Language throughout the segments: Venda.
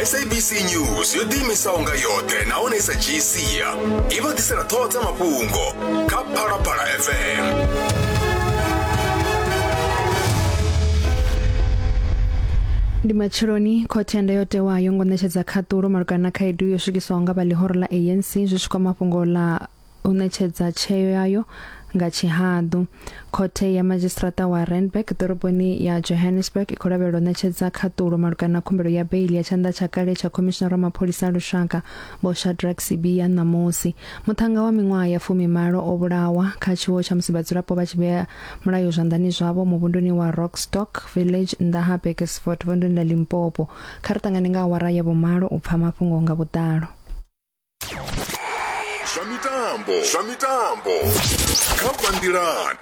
sabc news yo ḓiimisaho nga yoṱhe nahone i sa dzhii sia i vha ḓisela ṱhoho dza mafhungo kha phalaphala fm ndi matsheloni khothe ya ndayotewa yo ngo ṋetshedza khaṱulo malugana na khaedu yo swikiswaho nga vha ḽihoro ḽa anc zwi tshi kwama fhungo ḽa u ṋetshedza tsheo yayo nga tshihaḓu khothe ya madzhisiṱiraṱa wa randburg ḓoroboni ya johannesburg i khou lavhelela u ṋetshedza khaṱulo malugana na khumbelo ya beili ya tshanḓa tsha kale tsha khomishinara wa mapholisa a lushaka vho shadrack sibia ṋamusi muṱhannga wa miṅwaha ya fumimalo o vhulawa kha tshiwo tsha musi vhadzulapo vha tshi vhea mulayo zwanḓani zwavho muvhunduni wa rockstock village nnḓa ha bekesford vunduni ḽa limpopo kha ri ṱangane nga awara ya vhumalo u pfha mafhungo nga vhuḓalo zwa mitambo zwa mitambo kha banngilani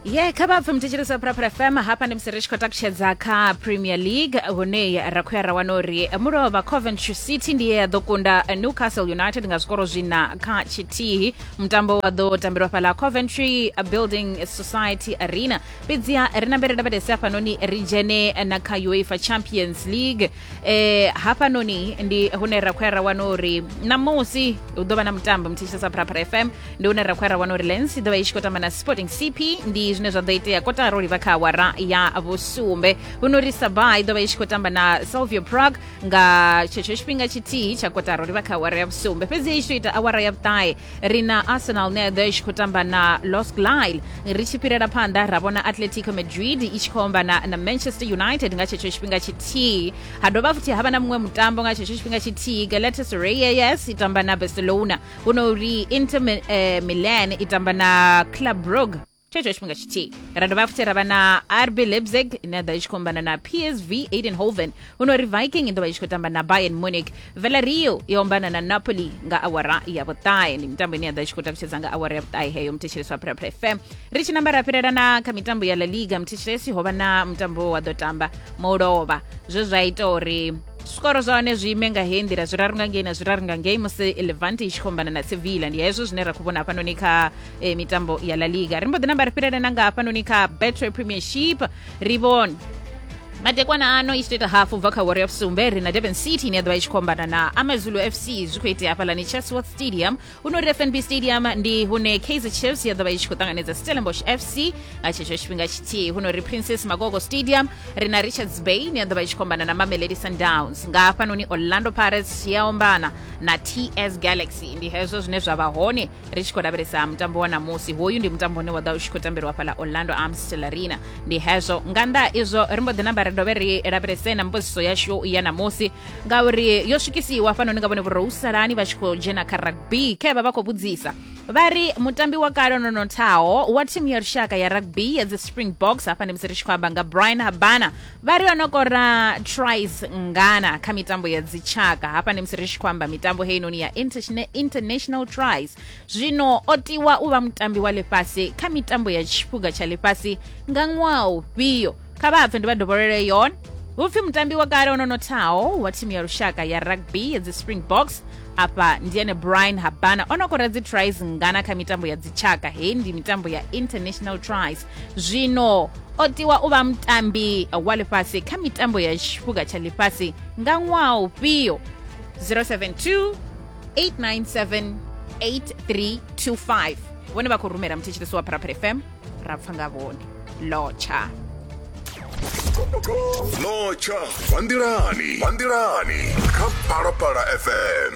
ye kha vha pfe muthetshelesa phuraphura fm hapa ndi musi ri tshi khou takutshedza kha premier league hune ra khou ya ra wana uri mulovha coventry city ndi ye ya ḓo kunda newcastle united nga zwikoro zwina kha tshithihi mutambo wa ḓo tambelwa fhala coventry building society arena fhedziha ri nambe ri lavhelese hafhanoni ri dzhene na kha uefa champions league eh, hafhanoni ndi hune ra khou ya ra wana uri namusi hu ḓo vha na mutambo mthetshelesa pharapara fm ndi hune ra khou ya ra wana uri lens i ḓo vha i tshi khou tamba na sporting cp ndi zwine zwa ḓo itea kotara u livha kha awara ya vhusumbe huno ri sabah i ḓo vha i tshi khou tamba na salvio prague nga tshetsho tshifhinga tshithihi tsha kotaro ri vha kha awara ya vhusumbe fhedzi hei tshi ita awara ya vhuṱahe ri na arsenal ne ḓo i tshi khou tamba na los glile ri tshi fhirela phanḓa ra vhona atletico madrid i tshi khou ombana na manchester united nga tshetsho tshifhinga tshithihi ha dovha futhi ha vha na muṅwe mutambo nga tshetsho tshifhinga tshithihi galatasaray yes i tamba na barcelona hu no uri inter Mi- eh, milan i tamba na club brugge tshetsho tshifhinga tshithihi ra dovha futhi ra vha na rb leipzig ine ya ḓo i tshi khou ombana na psv aidenhoven huno ri viking i ḓo vha i tshi khou tamba na bayern munich velario i ombana na napoli nga awara ya vhuṱahe ndi mitambo ine ya ḓo i tshi khou takutshedza nga awara ya vhuṱahe heyo muthetshelesi wa phuraphura fm ri tshi namba ra fhirela na kha mitambo ya la liga muthetshelesi ho vha na mutambo wa ḓo tamba mulovha zwe zwa ita uri zwikoro zwa hone zwi ime nga heyi nḓila zwiraru nga ngei na zwiraru nga ngei musi levante i tshi khou ombana na sevilla ndi hezwo zwine ra khou vhona hafhanoni kha eh, mitambo ya la liga ri mbo ḓi namba ri fhirele na nga hafhanoni kha betway premiership ri vhone madekwana ano i tshi tou ita hafu bva kha warrior sumbe ri na durban city ine ya ḓovha i tshi khou ombana na amazulu fc zwi khou itea hafhalani chatsworth stadium huno ri fnb stadium ndi hune kaizer chiefs ya ḓovha i tshi khou ṱanganedza stellenbosch fc nga tshetsho tshifhinga tshithihi huno ri princess magogo stadium ri na richards bay ine ya ḓovha i tshi khou ombana na mamelodi sundowns nga hafhanoni orlando pirates ya ombana na ts galaxy ndi hezwo zwine zwa vha hone ri tshi khou lavhelesa mutambo wa ṋamusi hoyu ndi mutambo une wa ḓa u tshi khou tambelwa fhaḽa orlando amstel arena ndi hezwo nga nnḓa izwo ri mbo ḓi namba ri dovhe ri lavhelese na mbudziso yashu ya ṋamusi ngauri yo swikisiwa fanoni nga vhone vhurousalani vha tshi khou dzhena kha rugby khe vha vha khou vhudzisa vha ri mutambi wa kale no nothaho wa thimu ya lushaka ya rugby ya dzi springboks hafha ndi musi ri tshi khou amba nga brian habana vha ri o no kora trice ngana kha mitambo ya dzitshaka hafha ndi musi ri tshi khou amba mitambo heinoni ya Interna- international trice zwino o tiwa u vha mutambi wa ḽifhasi kha mitambo ya tshiphuga tsha ḽifhasi nga ṅwaha ufhio kha vha pfe ndi vha dovholele yon hupfi mutambi wa kale ono nothaho wa thimu ya lushaka ya rugby ya dzi springboks afha ndi ene brian habana o no kora dzi trice ngana kha mitambo ya dzitshaka heyi ndi mitambo ya international trice zwino o tiwa u vha mutambi wa ḽifhasi kha mitambo ya tshifuga tsha ḽifhasi nga ṅwaha ufhio 072 897 8325 vhone vha khou rumela muthetshelesi wa pharapara fm ra pfa nga vhone lotsha lotsha vha nḓilani vha nḓilani kha phalaphala fm